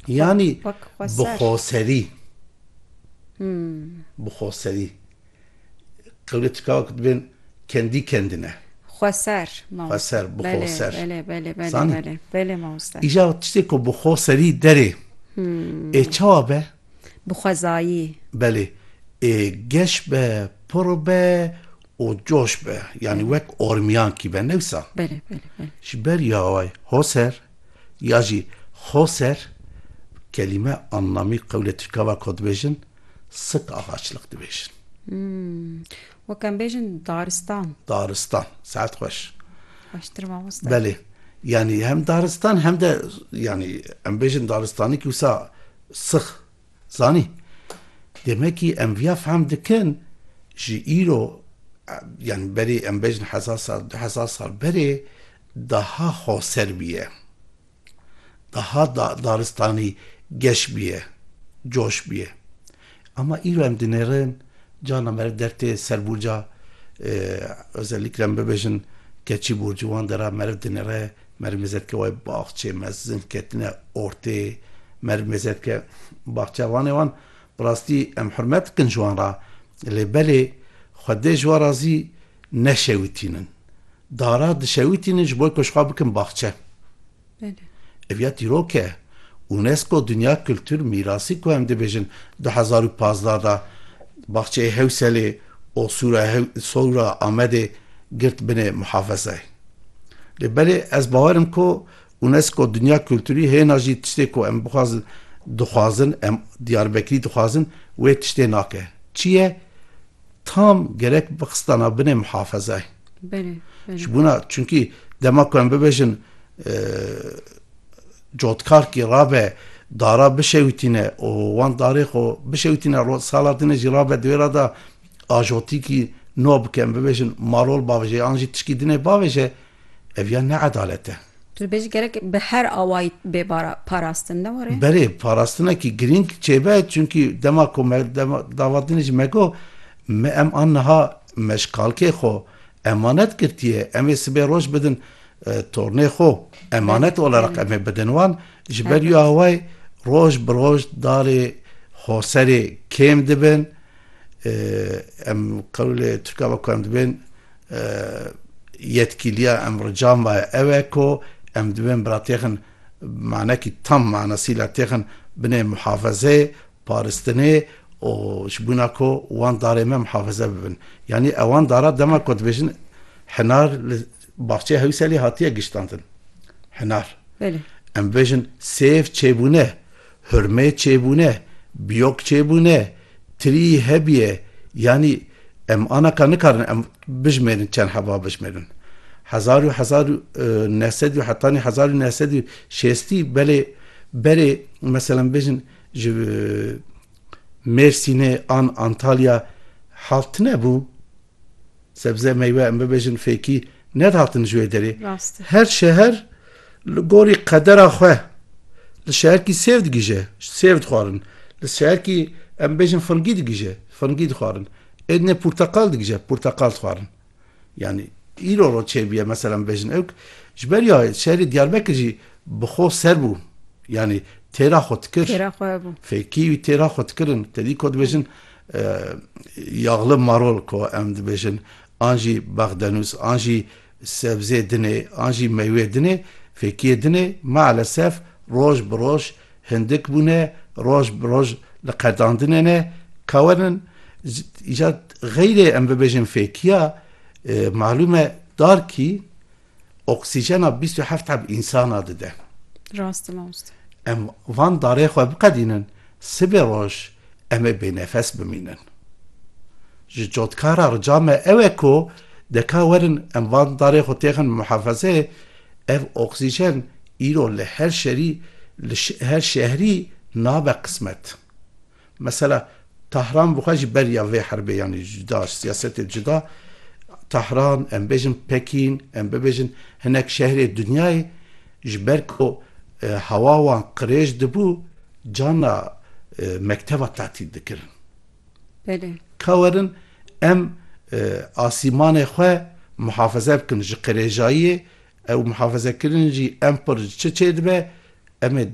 Yanî bi xoserî, bi xoserî qewlê tika ku dibên kendî kendine. Xweser mamoste. Xweser, bi xoser. Belê, belê, belê, belê, belê, belê mamoste. Îja tiştê ku bi xoserî derê ê çawa be? Bi xwezayî. Belê, ê geş be, pir be. û coş be, yanî wek ormiyankî be ne wisa. Belê, belê, belê. Ji ber yaway Hoser ya jî Xoser kelîme annamî qewlê tirkava ko dibêjin sik agaçlik dibêjin. Wek em bêjin daristan. Daristan, saet xweş. Xweştir mamosta. Belê, yanî hem daristan hem de yanî em bêjin daristanî kî wisa six. Zanî, demekî em viya fehm dikin ji îro yanî berê em bejin hezar sal du hezar sal berê daha xoser bûye. Daha daristanî geş bûye, coş bûye. Ama îro em dinêrin carna meriv dertê ser burca e, özellikle em bibêjin keçî burcu wan de ra meriv dinêre Mermêzetke wê baxçê mezin ketine ortê mermêzetke baxçevanê wan. Bi rastî em hurmet dikin ji wan re lê belê xwedê ji wan re zî neşewitînin. Dara dişewitînin ji bo ku ji xwe bikin baxçe. Ev ya dîrok e. UNESCO Dinya Kultur Mîrasî ku em dibêjin du hezar û pazdeh de baxçeyê Hewselê û Sora Amedê girt binê muhafezayê. Lê belê ez bawer im ku UNESCO Dinya Kulturî hêna jî tiştê ku em bixwazin dixwazin em Diyarbekirî dixwazin wê tiştê nake. Çi ye? Tam gerek bixistana binê mihafezayê. Belê. Ji bona çunkî dema ku em bibêjin cotkarkî rabe dara bişewitîne û wan darê xwe bişewitîne sala din jî rabe di wê ra de ajotîkî no bike em bibêjin malol bavêje yan jî tişkî dinê bavêje ev ya ne edalet e. Tu dibêjî gerek bi her awayî bê parastin ne were? Belê parastinekî girîng çêbe çunkî dema ku me dava dinê jî me got me em an niha me ji kalkê xwe emanet girtiye em ê sibê roj bidin tornê xwe emanet olarak em ê bidin wan ji ber wî awayî roj bi roj darê xoserê kêm dibin. Em qewlê Tirkan ve ku em dibên yetkîliya em rica me ew e ku em dibên bila têxin manekî tam manesîla têxin binê muhafezeyê, paristinê û ji bûna ku wan darê me muhafeze bibin. Yanî ewan dara dema ku dibêjin hinar li baxçeyê Hewîselê hatiye giştandin. Hinar. Belê. Em bêjin sêv çêbûne. Hurmê çêbûne, biyok çêbûne, tirî hebiye yanî em ana ka nikarin em bijmêrin çend heva bijmêrin. Hezar û hezar û neh sed û hetanî hezar û neh sed û şêstî belê berê meselan bêjin ji Mêrsînê an Antalya hav tine bû? Sebze meywe em bibêjin fêkî nedihatin ji wê derê. Her şeher li gorî qedera xwe li şeherkî sêv digije sêv dixwarin. Li şeherkî em bêjin fingî digije fingî dixwarin. Êdinê porteqal digije porteqal dixwarin. Yanî îro ro çêbiye mesela em bêjin ewk ji ber ya şerî Diyarbekir jî bi xwe ser bû. Yanî têra xwe dikir fêkî wî têra xwe dikirin te dî ku dibêjin Yaxli marol ku em dibêjin an jî bexdenûs an jî sebzê din ê an jî meywe din ê, fêkiyê din ê maalesef roj bi roj hindik bûne, roj bi roj li qedandinê ne, kawerin îcar xeyrê em bibêjin fêkiya malûm e darkî Oksîjena bîst û heft heb însana dide. Rast e mamoste. Em van darê xwe biqedînin, sibê roj em ê bênefes bimînin. Ji cotkara rica me ew e ku deka werin em van darê xwe têxin muhafezeyê, ev oksîjen îro li her şerî, li her şehrî nabe qismet. Mesela, Tahran bi xwe ji ber ya vê herbê yanî ji cuda, ji siyasetê cuda, Tahran, em bêjin Pekîn, em bibêjin hinek şehrê dinyayê, ji ber ku hewa wan qirêj dibû, carna mekteba tetîl dikirin. Ka werin em asîmanê xwe mihafeze bikin ji qirêjayiyê, ew mihafezekirinê jî em xwe ji çi çêdibe, em ê